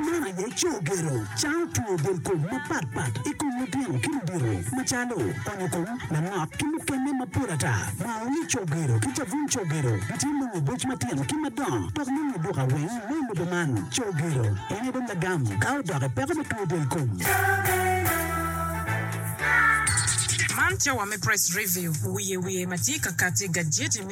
Man aye cogero, cawo tweyo del kom mapat pat i kom litino ki ludito macalo onyo kom, lanok ki mukene mapol ata. Maoni cogero ki cabun cogero gitye nongo boc matino ki madongo dok nongo duka weng me lobo man. Cogero en aye dong lagam ka odok i peko me tweyo del kom. Man cawa me Press Review, wiye wiye ma tye ka kati, gajeti me.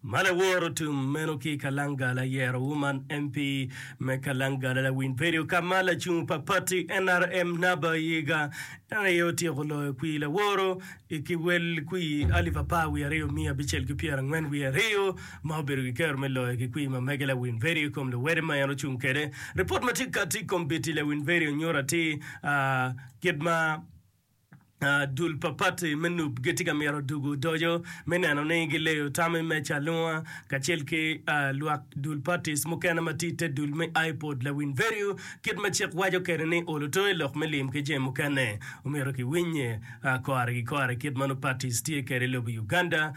Man e woro tum meno ki i Kalangala, Yero Woman MP me Kalangala Lawiny Perio ka ma lacung pa pati nrm Naba Yiga en aye otyeko loyo kwir laworo i ki wel kwir alip apar wiye aryo miya abicel ki pyera angwen wiye aryo ma obedo ki kero me loyo ki kwir ma mege Lawiny Perio i kom luwete ma en ocung kwede. Ripot ma tye kati i kombiti Lawiny Perio nyuto atir kit ma Dul pa pati me nup gitye ka mito dugo odoco me neno ni gileyo tam i meja alunga kacel ki lwak dul patis mukene ma tye i te dul me IPOD lawiny vedio kit ma cik waco kede ni olo to i lok me lim ki jami mukene omyero ki winye kore ki kore kit ma nongo patis tye kede i lobo Uganda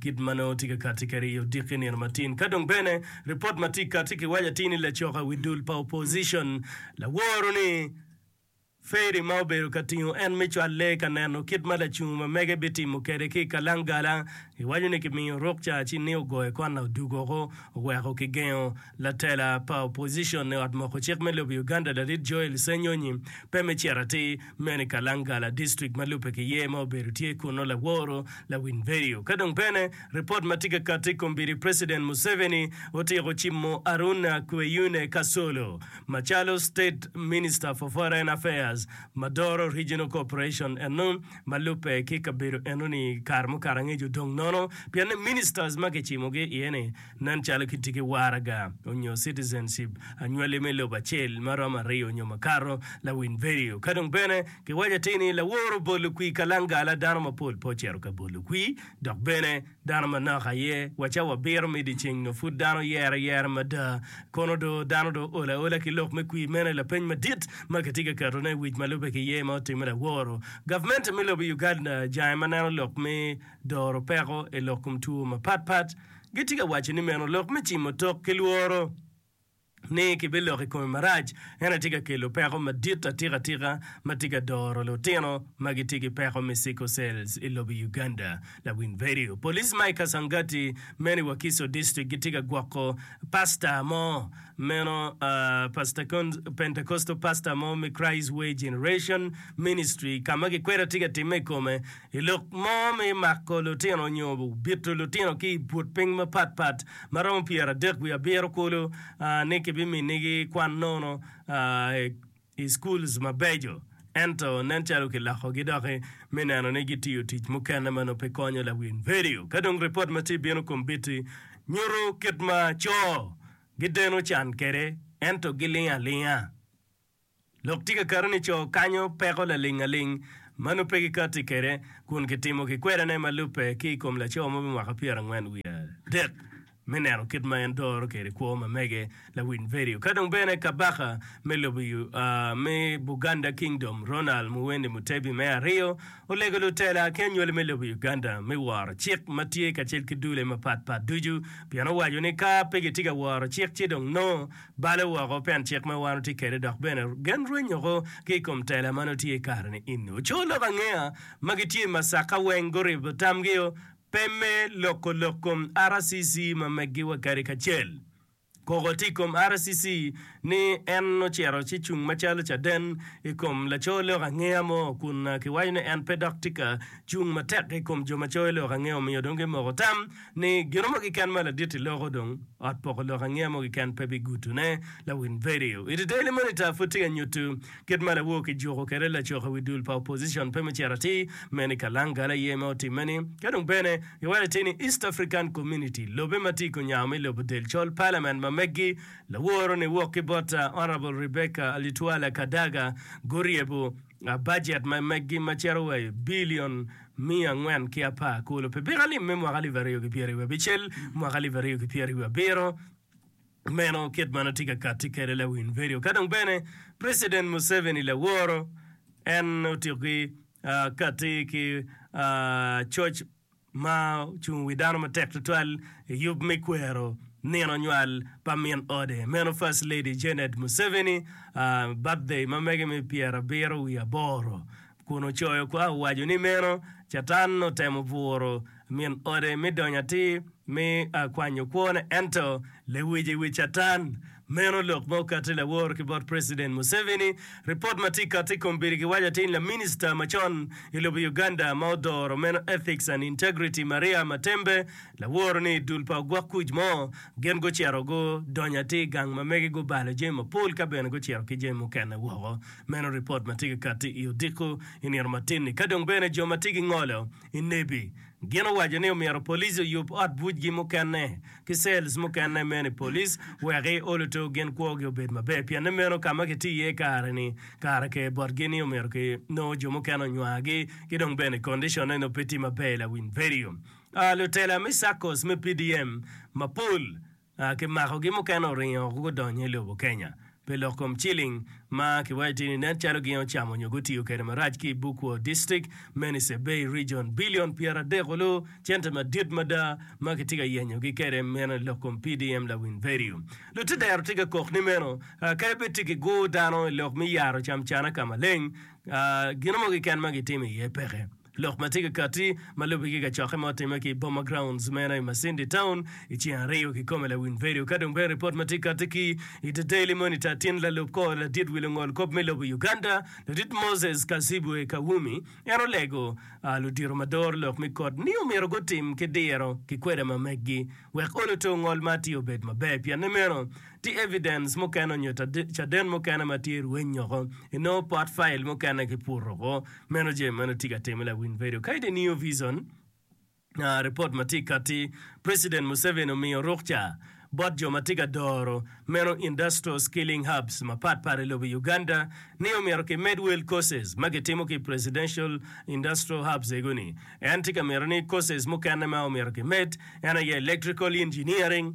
kit ma nongo tye ka kati kede i odiki nino matin ka dong bene report ma tye kati ki waco atir ni lacok i wi dul pa opposition laworo ni Ferry ma obedo ka tingo en me cwal lee ka neno kit ma lacungo ma mege bitimo kede ki i kalangala. Giwaco ni kimiyo ruk ca ci ni ogoye kwan na odug oko oweko kigengo. Latela pa opposition i ot moko cik me lobo Uganda Larit Joel Ssenyonyi pe me cito atir meno i Kalangala district ma lubbe ki yer ma obedo tye kunnu laworo lawiny vedio ka dong bene ripot ma tye ka kati i kombeddi President Museveni otiko cimo Aruna Kweyune Kasolo Macalo State Minister for Foreign Affairs ma doro Regional Cooperation eno ma lubbe ki kabedo enoni kare mukato angec odong nono pienni Ministers ma kicimogi iye ni nen calo gitye ki waraga onyo citizenship anywali me lobo acel ma romo aryo onyo makato lawiny vedio ka dong bene kiwaco atir ni laworo bolo kwii kalangala dano mapol pe ocito ka bolo kwii dok bene Dano manok aye wa ca wabiro mido i ceng nyo pud dano yere yere mada? Kono do dano do ool aola ki lok me kwir? Meno aye lapeny madit ma kitye ka keto ne i wic ma lube ki ye ma otimme laworo. Gavment me lobo Uganda jange ma neno lok me doro peko i lok kom two mapat pat gitye ka waco ni meno lok me cimo tok ki lworo. ni kibiloko i kome marac, en aye tye ka kelo peko madit atikatika ma tye ka doro lutino ma gitye ki peko me sickle cells i lobo Uganda. Lawiny Vedio. Police ma i Kasangati meno i Wakiso District gitye ka gwoko pastor mo meno Pentecostal pastor mo me Christ Way Generation Ministry ka ma gikwede tye ka timme i kome I lok mo me mako lutino nyo bito lutino ki i but piny mapat pat ma romo pyeradek wiye abiro kulu ni kibiminigi kwan nono i schools mabeco ento nen calo kilokogi doki me neno ni gitiyo tic mukene ma nongo pe konyo lawil. Vedio ka dong ripot ma tye bino kom biti nyuto kit ma co gideno can kede ento gilingo alinga. Lok tye ka kato ni co kanyo peko laling aling ma nongo pe gikatti kwede kun kitimo kikwedane ma lubbe ki i kom laco mo me mwaka pyerangwen wiye adek me neno kit ma en doro kwede kwo ma mege. Lawiny Vedio ka dong bene Kabaka me lobo me Buganda Kingdom Ronald Muwende Mutebi me aryo olego lutela ki anywali me lobo Uganda me woro cik ma tye kacel ki dule mapat pat ducu pien owaco ni ka pe gitye ka woro cik ci dong nongo Bale woko pien cik ma wan watye kwede dok bene gen rwenyoko ki i kom tela ma nongo tye i kare-ni eni. Oco lok angeya ma gitye i Masaka weng guribo tamgio pe me loko lok kom RCC ma meggi wa kadi kacel. Koko tye i kom RCC ni en ocito ci cung macalo caden i kom laco lok angeya mo kun kiwaco ni en pe dok tye ka cung matek i kom jo ma coyo lok angeo omiyo dong gimoko tam ni gino mo kiken ma laditi loko dong ot poko lok angeya mo kiken pe bigutune. Lawin vedio i The Daily Monitor pud tye ka nyutu kit ma lawo kijuku kede lacok i wi dul pa opposition pe mucito atir men i kalangala aye ma otimme ni ka dong bene giwaco atir ni East African Community lobe ma tye i kunyago me lobo del col parliament ma meggi laworo ni wok ki bot Honourable Rebecca Alitwala Kadaga guryebu bajet ma meggi ma cito wa i bilion miya angwen ki apar kulu pi piko alim me mwaka alip aryo ki pyeri wiye abicel mwaka alip aryo ki pyeri wiye abiro. Meno kit ma notye ka katti kwede lawiny vedio. Ka dong bene President Museveni laworo, en otiki katti ki coc. ma ocung i wi dano matek tutwal i yub me kwero nino nywal pa min ode meno First Lady Janet Museveni, birthday ma mege me pyera abiro wiye aboro, kun ocoyo kwo owaco ni meno Catan otemo buro min ode me donyo atir me kwanyo kwone ento lewic i wi Catan. Meno lok ma okatti lawor ki bot President Museveni. Ripot ma tye kati ikom piri giwaco atin laminista macon ilobo Uganda ma odoro meno Ethics and Integrity Maria Matembe laworo ni idul pa ogwok kuc mo gin gucito gu donyo atir igang ma mege gu balo jami mapol ka bene gucito ki jami mukene woko. Meno ripot ma tye ka kati i odiko inito matin ni kadong bene jo ma tye gingolo I nebi, gin owaco ni omyero police oyub ot bucgi mukene ki cells mukene meno i police wek i oluto gin kwogi obed maber pienne meno ka ma kiti iye kare-ni kare ker botgi ni omyero ki nongo jo mukene onywagi ki dong bene condition-ne nongo pe tye maber Lawiny Verio. Lutela me SACCOs me PDM mapol ki makogi mukene oringo gudonyo i lobo Kenya pi lok kom ciling ma kiwaco tye ni nen calo gin ocamo nyo gutiyo kwede marac ki i Bukwo District me Nice Bay Region. Billion pyera dek olu cente madit mada ma kitye ka yenyo gi kwede meno i lok kom PDM Lawin Verio. Lutedero tye ka kok ni meno kadi bed tye ki gur dano i lok me yaro cam cana ka maleng, gino mo keken ma gitimo iye peke. Lok ma tye ka katti ma lubbe ki kacokke ma otimme ki i Boma Grounds meno i Masindi Town i ceng aryo kikome lawiny vedio ka dong bene ripot ma tye katti ki i The Daily Monitor tin lalub kor ladit wi lungol kop me lobo Uganda Ladit Moses Kazibwe Kawumi en olego ludito ma doro lok me kot ni omyero gutim ki diro ki kweda ma meggi wek olo to ngol ma atir obed maber pienne meno Ti evidens mukene onyo caden mukene ma tye rweny nyoko inongo pot file mukene ki pur oko. Meno je meno ti ka time la win vedio. Ka ide New Vision, report ma ti kati President Museveni omiyo rukca bot jo ma ti ka doro meno industrial skilling hubs mapat pat i lobo Uganda ni omito ki med wel courses ma ki timo ki presidential industrial hubs ego ni. En ti ka mito ni courses mukene ma omito ki med en aye electrical engineering,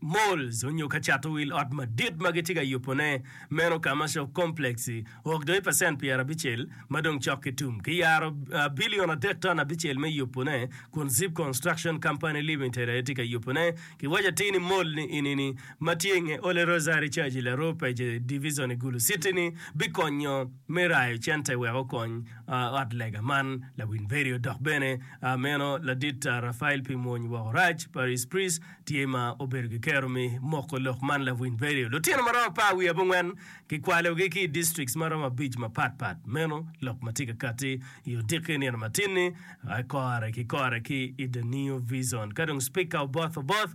malls onyo ka cato wil ot madit ma gitye ka yubo ne meno commercial complex ok doyo pacent pyera abicel ma dong cok ki tum ki yaro billion adek ton abicel me yubo ne kun zip construction company limited aye tye ka yubo ne ki waco atir ni mall ni eni ni ma tye inge ole rosary church i laroo page division i gulu city ni bikonyo me rayo cente wek okony ot lega man. Lawil Mveri odok bene meno ladit Rafael pi mwony woko rac pa Rice Price tye ma obedo ki kero me moko lok man. Lawil Mveri lutino ma romo apar wiye abongwen kikwalogi ki i districts ma romo abic mapat pat meno lok ma tye ka katti i odiki nino matinni kore ki kore ki i The New Vison ka dong Spika Oboth Oboth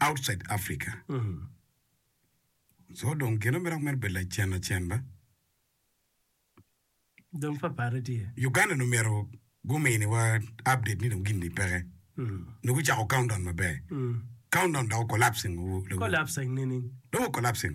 outside Africa so dong gine mere myero obed lacen lacen ba. Dong papare tye. Uganda dong myero gumini wa update ni dong gin ni peke. Nongo gucako countdown maber. Countdown dok collapsing. Collapsing nining? Dong collapsing.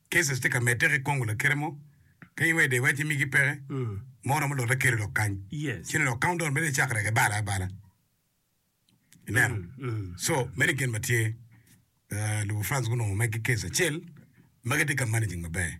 Cases tye ka medde ki kongo lakite mo piny wede iwec ni migi peke ma oromo lote keri lok kany ci ni lok countdown mene icak reke balo abala ineno so meno gen ma tye lobo France gunongo magi case acel ma gitye ka managing maber.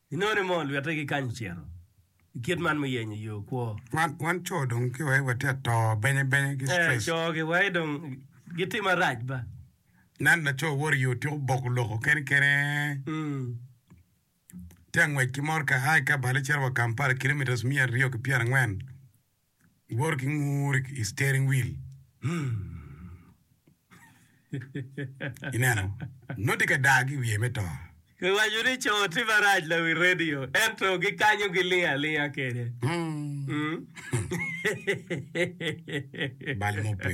Inongo ni moo lwite ki kany ocito I kit man muyenyo yoo kwo. Wan coo dong ki wai watye atoo benye benye ki stress. Eeh coo ki wai dong gitye marac ba. Nan lacoo woro i yoo tyeko boko loko kene kene tye angwec ki morka ai kabale cito wa Kampala kilometres miya aryo ki pyerangwen. Iwoto ki ngur i steering wheel. Ineno, noti ka daa ki i wiye me to. Giwaco ni co tye marac lawi radio, ento gikanyo gilingo alinga kede. Bal mupe.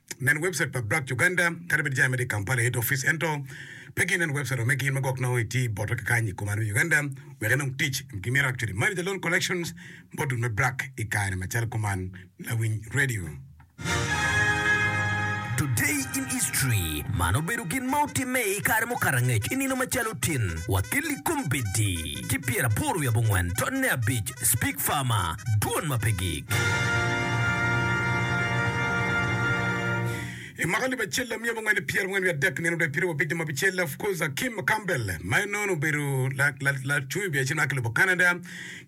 Nen webcait pa Black Uganda, kadi bed jami ma tye i Kampala Head Office ento pe ginen webcait wa me gin ma gwok nongo itye boto ki kany i kom aryo Uganda wek inong tic. Gimito actually manager loan collections module me Black i kare macalo kuman. Lawiny Radio. Today in History, Man obedo gin ma otimme i kare mukato angec i nino macalo tin wa ki likom bedi ki pyeraboro wiye abongwen totne abic, Speak Farmer, Dwon ma pe gik. I mwaka alip acel dok myel mungwen ki pyera angwen wiye adek nino dok i pyerawiye abic dong ma bicel, of course Akim Campbell ma en nono obedo lacung i biacer ma ki lobo Canada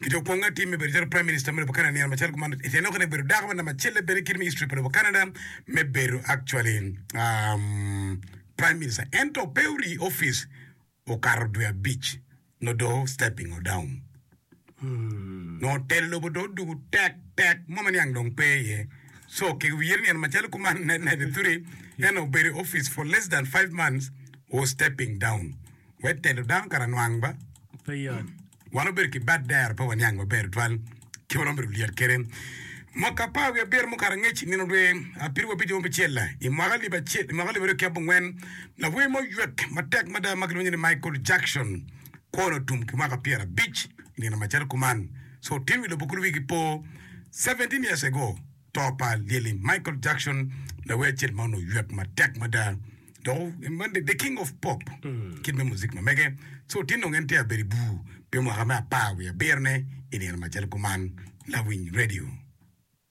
ki dong kwongo atim me bedo calo Prime Minister me lobo Canada nino macalo kuman i Enock dok obedo dako ma namba acel bene i kit me history pa lobo Canada me bedo actually Prime Minister ento pe orii office Okato dwe abic nongo do stepping odown. Nongo telo lobo do odugu tek tek mo ma niang dong pe iye. So kegi wiye nino macalo kuman 1993 en obedo i office for less than five months was stepping down. Wet telo dano kara nwang ba? Pe yot. Wan wabedo ki bad dero pe waniang maber tutwal kit ma romo bedo lyet kwede. Mwaka apar wiye abiro mukato angec i nino dwe Apiru wa Abico ma Bicel-la, i mwaka alip acel, i mwaka alip aryo ki abongwen, lawer mo oywek matek mada ma kilwongo ni Michael Jackson kwone otum ki mwaka pyera abic i nino macalo kuman. So otin wi lobo kulu wigi po 17 years ago. To pa Lyelli Michael Jackson, lawer acel ma onongo oywek matek mada, dok en man the king of pop, kit me muzik ma mege. So tin dong en tye ka bedo i bur pi mwaka me apar wiye abiro-ne i nino macalo kuman. Lawiny Radio.